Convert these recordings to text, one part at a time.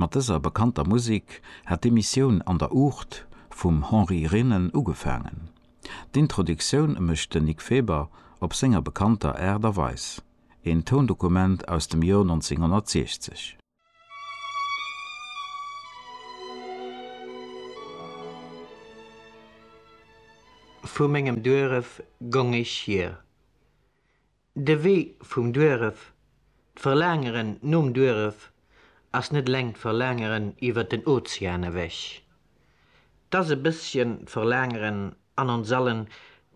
Mat dëser bekannter Musik hat d'Emissioun An der Uucht vum Henri Renen ugefaangen. D'Introductioun mécht den Nic Feber op senger bekannter Aart a Weis, een Toundokument aus dem Joer 1960. Vu mengem Dueref gong ech hier. De Wee vum Duerf, d'Verlaangeren nom Duerf ass net eleng d'Verlaangeren iwwert den Ozean ewech. 't ass e bësschen d'Verlaangeren an ons allen,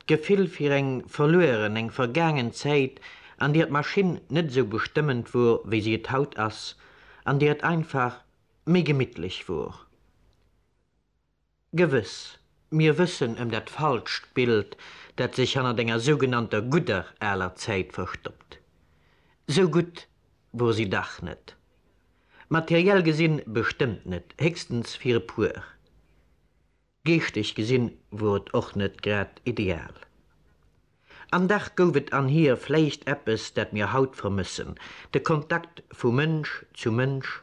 d'Gefill fir eng verlueren, eng vergaangen Zäit, an där d'Maschinn net esou bestëmmend wor, wéi si et haut ass, an där et einfach méi gemittlech wor. Gewëss, mir wëssen ëm dat falscht Bild, dat sech hannert enger sougenannter gudder aler Zäit verstoppt. Sou gutt wor si dach net. Materiell gesinn bestëmmt net, héchstens fir e puer. Geeschteg gesinn wor et och net grad ideal. An dach gouf et an hir vläicht eppes, dat mir haut vermëssen, de Kontakt vu Mënsch zu Mënsch,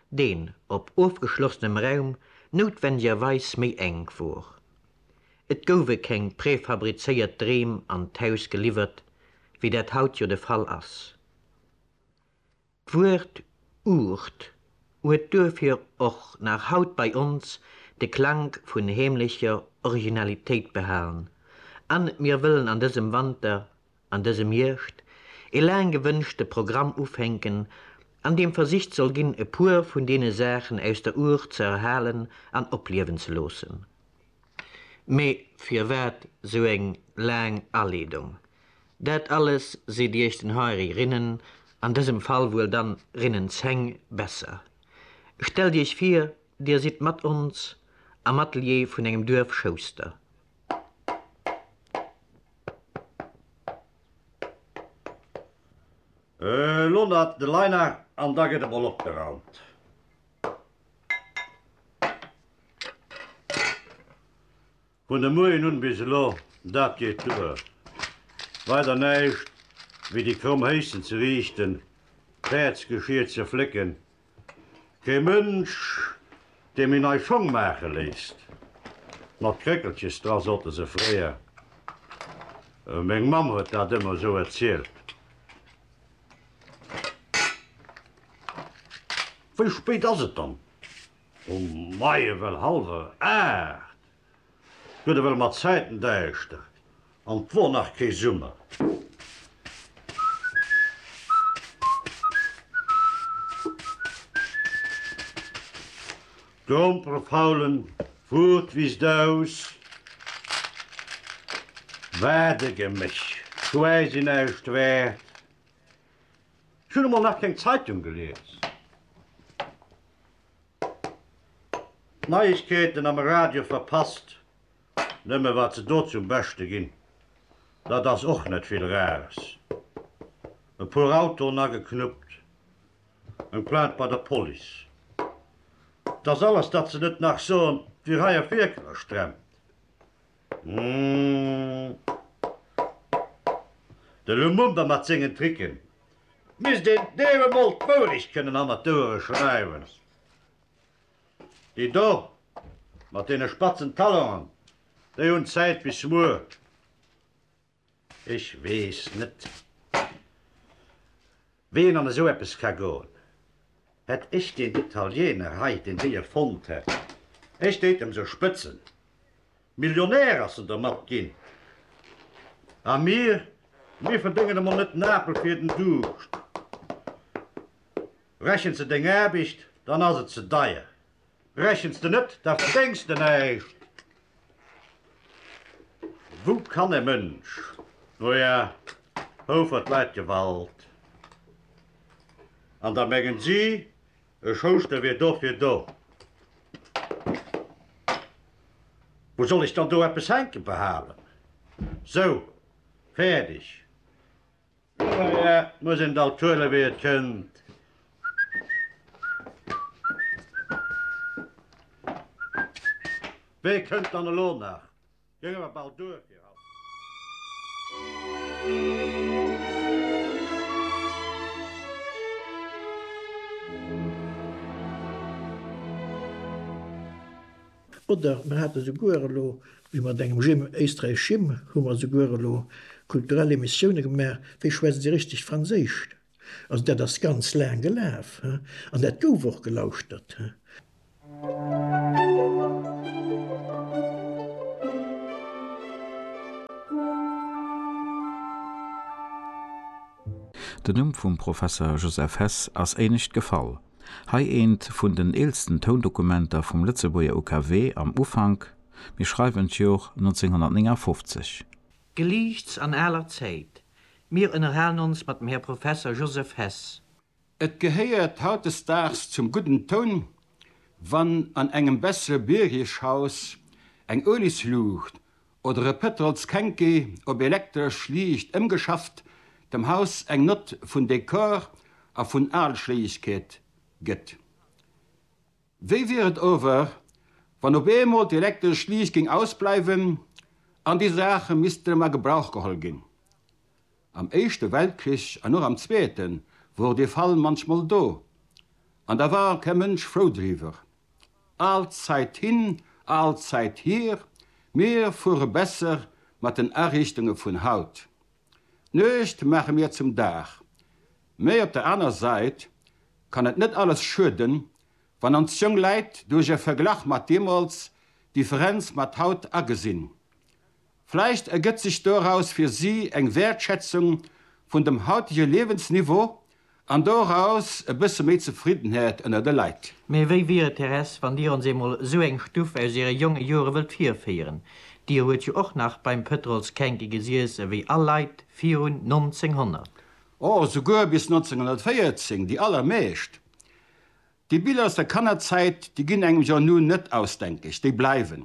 deen op ofgeschlossenem Raum noutwendigerweis méi enk wor. Et gouwe keng prefabrizéiert Dreem an d'Haus geliwwert, wéi dat haut jo de Fall ass. D'Wuert Uucht huet duerfir och nach haut bei ons de Klank vun heemlecher Originalitéit behalen an mir wëllen an dësem Wanter an dësem Hierscht ee laang gewënschte Programm ufänken, an deem versicht soll ginn, e puer vun deene Saachen aus der Our ze erhalen an opliewen ze loossen. Mee firwat sou eng laang Aleedung? Dat alles seet Iech den Henri Rinnen, an dësem Fall wuel dann Rinnen 10, besser. Stellt Iech vir, Dir sidd mat ons am Atelier vun engem Duerfschouster. Äh, lo na de Liner an da gëtt emol opgeraumt. Vun de Moien un bis elo, dat geet duer. Weider näischt wéi déi kromm Héissen ze riichten, d'Päerdsgeschier ze flécken Dee Mënsch, dee mir nei Schong maache léisst, mat Kréckelches dra, sote se fréier. Meng Mamm huet dat ëmmer esou erzielt. Wéi spéit ass et dann um Maien? Well hallwer aacht. Guet ewell mat Zäiten däischter an 't wor nach kee Summer. D'Grompere faulen wor d'Wiss daus. Wat e Geméch quäsi näischt wäert. Ech hun emol nach keng Zeitung gelies. D'Neiegkeeten am Radio verpasst, nëmme wat se do zum Beschte ginn, dat ass och net vill Rares. E puer Autoen ageknuppt, eng Plainte bei der Police, et ass alles, datt se net nach soen, wie hei op Wierker stremmt. De Lumumba mat sengen Tricken. Et misst een deem emol d'Wourecht kënnen hannert d'Ouere schreiwen. Déi do mat deene spatzen Talongen, déi hunn Zäit bis muer. Ech weess net, wéi een an esou eppes ka goen. Hätt ech deen Italiener hei, deen déi erfonnt hätt, ech déit em sou spëtzen. Millionär ass en dermat ginn. A mir, mir verdéngen emol net en Apel fir den Duuscht. Rechent se deng Aarbicht, dann ass et ze deier. Rechens de net, da verdengs de näischt. Wou kann e Mënsch no ja houfert d'Leit Gewalt an da mengen si e Schouster wier dofir do. Wou soll ech dann do eppes hänke behalen? Sou, fäerdeg. Et muss een et alt huelen, wéi et kënnt. Wéi kënnt dann elo nach? Gëng awer bal duer fir haut. Oder mer hate souguer elo, wéi mat engem Jim Éisträich Jim hu mer souguer elo kulturell Emissioune gemaach, Wéi schwätze si richteg Franséisch? Also dat ass ganz laang gelaf an dat gouf och gelauschtert. Den Numm vum Professer Joseph Hess ass éinescht gefall. Hei eent vun den eelsten Toundokumenter vum Lëtzebuerger UKW am Ufank, mir schreiwen d'Jor 1959. Geliichts an aler Zäit, mir ënnerhalen ons mat dem Här Professer Joseph Hess. Et gehéiert hautdesdaags zum gudden Toun, wann an engem bessere Bürgerhaus eng Uelisluucht Oder e Pëtrols Kenke op elektresch liicht ëmgeschafft, dem Haus eng Nott vun Dekor a vun Aalschléiegkeet gëtt. Wéi wier et ower, wann op eemol d'elektresch Liicht géing ausbleiwen an déi Saache missten a Gebrauch geholl ginn? Am Éischte Weltkrich an och am Zweete wor dee Fall munchmol do, an da war kee Mënsch frou driwwer. Al Zäit hin, al Zäit hier, mir fuere besser mat den Ariichtunge vun haut. D'Nuecht maache mir zum Dag. Mee op der aner Säit kann et net alles schueden, wann ons jonk Läit duerch e Verglach mat deemools d'Differenz mat haut agesinn, Vläicht ergëtt sech doraus fir si eng Wäertschätzung vun dem hautege Liewensniveau an doraus e bësse méi Zefriddenheet ënner de Leit. Mee wéi wier et, Thérèse, wann Dir ons eemol esou eng Stuff aus Iere jonge Jore wëllt virféieren? Dir huet jo och nach beim Pëtrol's Känke gesiess ewéi all Leit virun 1900. O, souguer bis 1914, déi allermeescht. Déi Biller aus der Kannerzäit, déi ginn engem jo nun net ausdenkeg, déi bleiwen.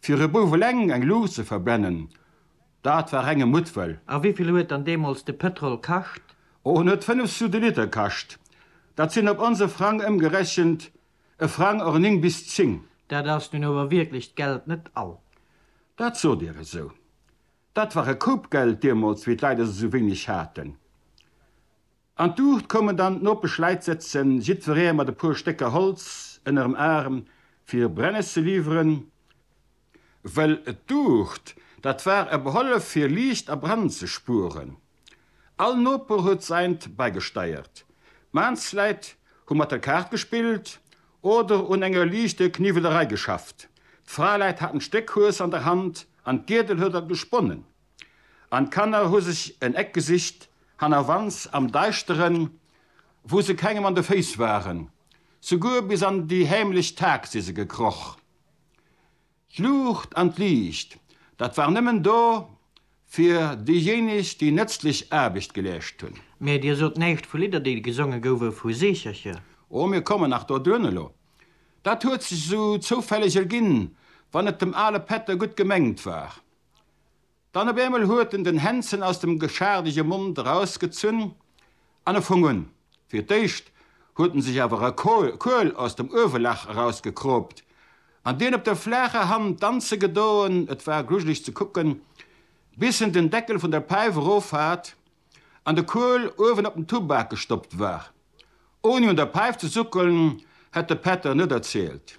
Fir e Bouf eleng eng Luucht ze verbrennen, dat war renge Muttwëll. A wéivill huet dann deemools de Pëtrol kascht? Oh, en huet 5 sous de Liter kascht. Dat sinn op onse Frang ëmgerechent e Frang or 9 bis 10. Dat ass nun ower wierklech d'Geld net all. Dat sot Dir esou. Dat war e Koup Geld deemools, wéi d'Leit esou wéineg haten. An d'Uucht koumen dann d'Nopesch Läit sëtzen, jiddferee mat e puer Stécker Holz ënnerem Aarm, fir Brennes ze liwweren, wëll d'Uucht, dat war e Behollef, fir Liicht a Brand ze spueren. All Noper huet säint bäigesteiert. D'Maansläit hu mat der Kaart gespillt oder un enger liichte Kniwwelerei geschafft. D'Fraeläit haten d'Stéck Hues an der Hand an d'Giedel huet dat gesponnen. an d'Kanner hu sech en Eck gesicht, hannerwands am Deischteren, wou se kengem an de Féiss waren. Souguer bis an déi heemlech Tag si se gekroch. D'Luucht an d'Liicht, dat war nëmmen do fir déijéineg, déi nëtzlech Aarbecht geleescht hunn. Mee Dir sot näischt vu Lidder, déi gesonge gouwe vu Seechercher. Oh, mir kommen nach doduerno elo. Dat huet sech esou zoufälleg erginn, wann et dem ale Pätter gutt gemengt war. Dann op eemol huet en den Hänzen aus dem geschaardege Mond erausgezunn an e fong un. Fir d'éischt huet en sech awer e Kuel aus dem Uewelag erausgekroopt an deen op der flaacher Hand danze gedoen, et war grujeleg ze kucken, bis en den Deckel vun der Päif erof hat an de Kuel uewen op den Tubak gestoppt war. Ouni un der Päif ze suckelen, hätt de Pätter net erzielt.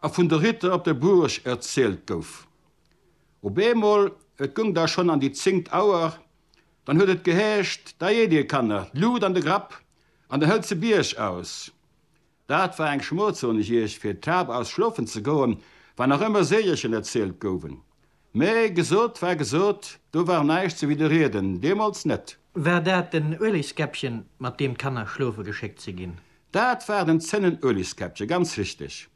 A vun de Ritter op der Buurg erzielt gouf. Op eemol, et gung da schon an déi zéngt Auer, dann huet et geheescht, Da eet dir, Kanner, d'Lut an de Grapp an dann hëllt se Bierg aus. Dat war eng Schmoll, soen ech iech, fir d'Hab aus schlofen ze goen, wann nach ëmmer Seegerchen erzielt gouwen. Mee gesot war gesot, do war näischt ze widderrieden, deemools net. War dat den Ueliskäppchen, mat deem d'Kanner schlofe geschéckt si ginn? Dat war den Zénnenueliskäppchen, ganz richteg.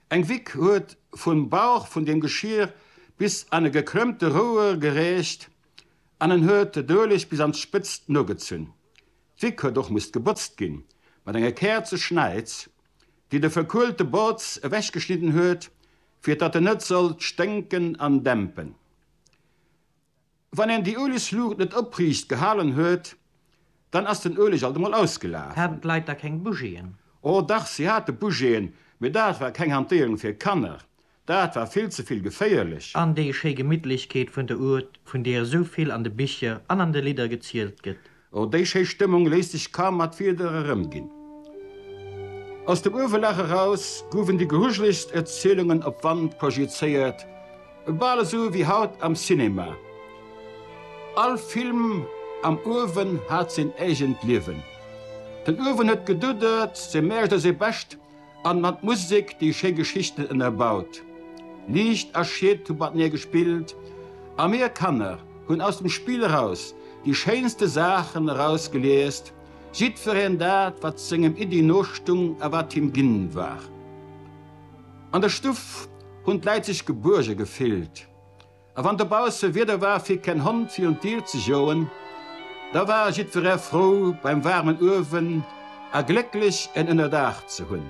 Eng Wick huet vum Bauch vun deem Geschier bis an e gekrëmmte Rouer gereecht an en huet d'Ueleg bis an d'Spëtzt nogezunn. D'Wick huet och musst gebotzt ginn, mat enge Käerzeschnäiz, déi de verkuelte Botz ewechgeschnidden huet, fir datt en net sollt sténken an dämpen. Wann een déi Uelegsluucht net opriicht gehalen huet, dann ass den Ueleg alt emol ausgelaf. Haten d'Leit da keng Bougiën? O dach, si hate Bougiën, mee dat war keng Hantéierung fir Kanner. Dat war vill ze vill geféierlech. An déi schéi Gemittlechkeet vun der Ourthe, vun deer esou vill an de Bicher an an de Lidder gezielt gëtt. Oh, déi schéi Stëmmung léisst sech kaum mat Wieder erëmginn. Aus dem Uewelag eraus gouwen déi grujelegst Erzielungen op d'Wand projizéiert, bal esou wéi haut am Cinema. All Film am Uewen hat seen eegent Liewen. Den Uewen huet geduddert, seng Mäercht a seng Bescht An mat Musek déi schéi Geschichten ënnerbaut. Liicht a Schied hu matenee gespillt a mir Kanner hunn aus dem Spill eraus déi schéinste Saachen erausgeliest, jiddwereen dat, wat sengem Iddi nostung a wat him ginn war. An der Stuff hunn d'Läit sech gebuerge gefillt. A wann dobausse Wieder war fir keen Hond fir un d'Dier ze joen, da war jiddweree frou beim waarmen Uewen a glécklech en Ënnerdaach ze hunn.